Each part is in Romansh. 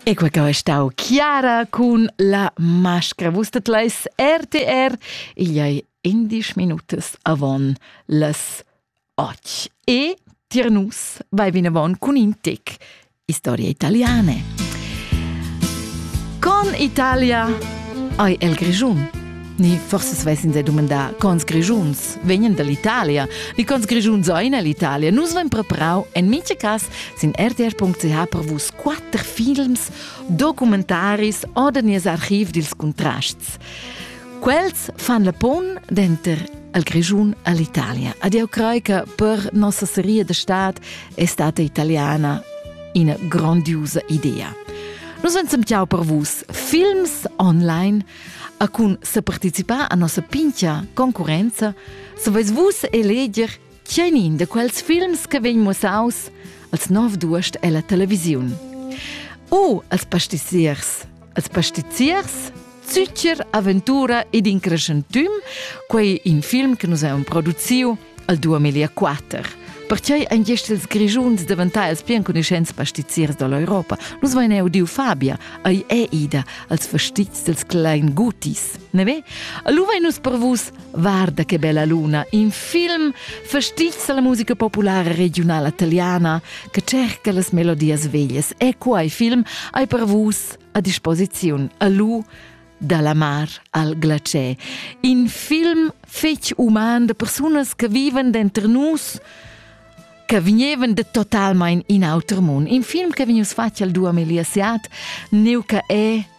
E quei che è stau chiara cun la mascra. Vusstet leis RTR, igl ei indisch minutas avon las och. E tier nus vai vinavon cun in tec historia italiane. Con Italia ai el Grischun. Ni forse svessin se domandar, cons Grischuns vegnen dall'Italia, ni cons Grischuns ein l'Italia. Nus vein preparau en mice cas Sin rtr.ch per vus quatter films, documentaris oder nies archiv dils contrasts. Quels fan la pon denter al Grischun all'Italia. Adio Craica per nossa serie de stat è stata italiana una grandiosa idea. Nos vencem ciao per vus films online a cun se partecipar a nossa pincha concorrenza, se vais vus eleger Tgeinin de quels films che vegn mussaus als nov d'uost ella televisiun? O als pastiziers! Als pastiziers? Zücher, aventura ed in crescentüm, quei in film che nus haveum produziu al 2004. Perchei ein gest ils Grischuns daventai els pli enconuschents pastiziers dall'Europa. Nus vein eu diu Fabia, ei è ida als fastizs dels klein gutis, ne ve? Lu vein nus per vus Guarda che bella luna, in film fastizza la musica populara regiunala italiana che cerca las melodias veglias e quai film hai per vus a disposiziun a lu dalla mar al glacier. In film fetg uman de persunas che viven dentro nus che vegnevan de totalmein in auter mund. In film che vegnius fatg al duamiliasiat, neu che è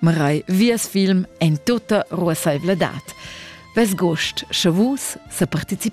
Marei vias film en tota ruassaivladad. Ves gost, sche vus se participeis.